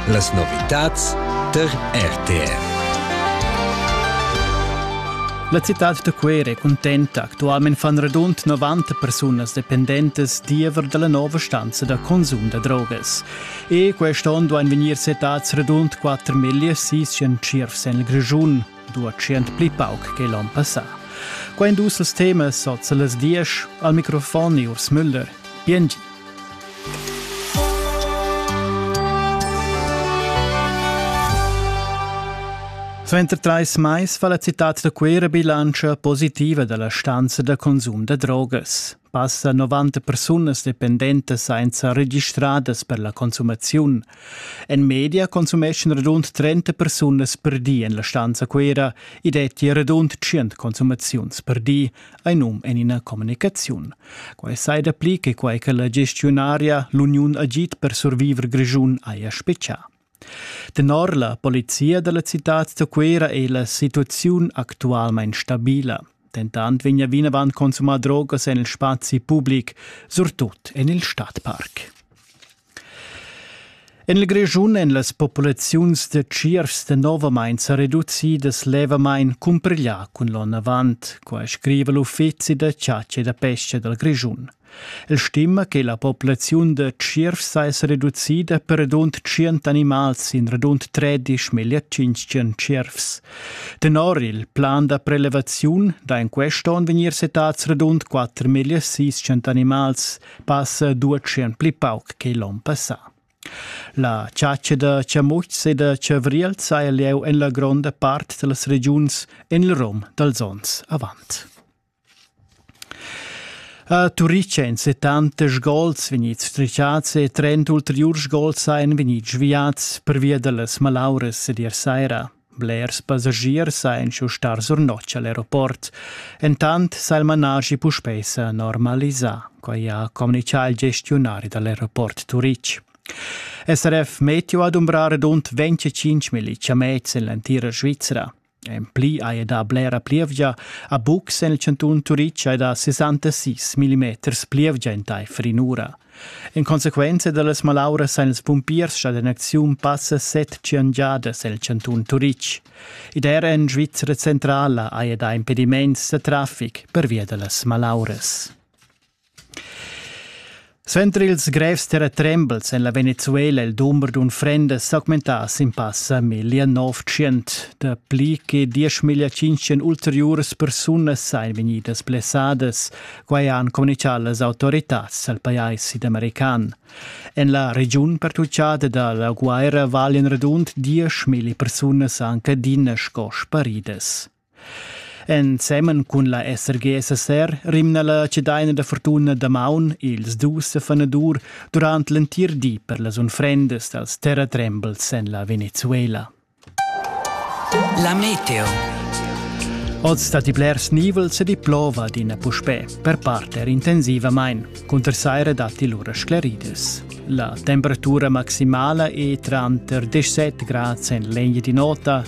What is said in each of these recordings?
Las novitads tar RTR. La citad da Cuera è cuntenta. Actualmein fan radund 90 persunas dependentas diever dalla nova stanza da consum da drogas. E quest'onn duein vegnir setats radund 4.600 tschiervs en il Grischun. 200 pli pauc che l'onn passà. Quai dus els temas sot las diesch al microfon Urs Müller. Biengi. Suenter trais mais fa la citad da Cuera bilantscha positiva dalla stanza da consum da drogas. Passa 90 persunas dependentas sainza registradas per la consumaziun. En media consumeschan radund 30 persunas per di en la stanza Cuera e detti radund 100 consumaziuns per di, ein um en ina communicaziun. Quai sai dapli che quai che la gestionaria l'Uniun Agit per survivor Grischun haja specià. Tenor la polizia dalla citad da Cuera ei la situaziun actualmein stabila. Dentant vegna vinavant consumà drogas en il spazi public, surtut en il Stadtpark. En il Grischun èn las populaziuns da tschiervs danovamain sa reducidas levamain cumpiglià cun l'onn avant, quai scriva l'Uffizi da chatscha e da pesca dal Grischun. El stima che la populaziun da tschierv seis reducida per radund tschient animals in radund tredisch meglio tschintg tschiervs. Tenor il plan da prelevaziun da in quest'on vegnir setats radund quatter meglio seicent animals passa duecent pli pauc che l'on passà. La chatscha da chamutschs e da chavriels ha lieu en la gronda part da las regiuns en il rom dals onns avant. A Turic ein settanta sgols vegnids strichats e trenta ulteriurs sgols ein vegnids sviads pervia dallas malauras ed ier saira. Blers passagiers ein schiu stars or notg al aeroport. Entant sa il manaschi puspei sa normalisar, quai ha communicà il gestionari dall'aeroport Turic. SRF Meteo ad umbrar rund 25 mil ciamets en l'entira Svizra. En pli haja dà blera plievgia a bucs en il chantun Turitg e da 66 millimeters plievgia entaifer in'ura. En consequenza da las malauras han ils pumpiers stat en acziun passa set giangiadas el chantun Turitg. Ed er en Svizra centrala haja dà impediments da traffic pervia da las malauras. Suenter ils grevs terratrembels en la Venezuela il dumber d'unfrendas s'augmentà sin passa 1900. Dapli che 10.500 ulteriuras persunas ein vegnidas blessadas, quai han communichà las autoritads al pajais sidamerican. En la regiun pertutgada dalla guerra valian radund 10.000 persunas anc adina sco sparidas. Ensemen cun la SRG SSR rimna la cedaina da fortuna damaun ils dus fanadur durant l'entir di per las unfrendas dals terratrembels en la Venezuela. La meteo. Oz stat i blers nivels ed i plova adina puspè, per part er intensivamain. Cunter saira datti lura sclaridas. La temperatura maximala è tranter 17 grads en l'egna di nota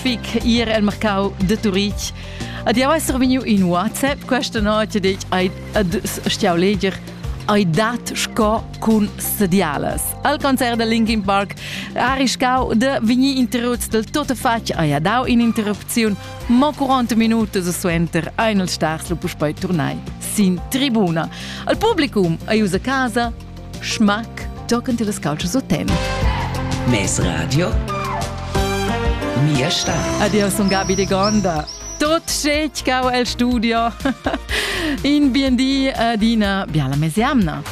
Fic ir el mercau de Turitg. Ad jau esser veniu in WhatsApp questa notte detg ai ad stiau leger ai dat sco cun sedialas. Al concert de Linkin Park arriscau de veni interruts del tot fatg ai dau in interrupziun mo 40 minutos suenter ein il stars lu puspei turnai sin tribuna. Al publicum ai usa casa Schmack tochen tillas calzas o tem. Mes radio Mia sta. Adio, sun Gabi de Gonda. Tot scech cau el studio. In bien di adina biala mesiamna.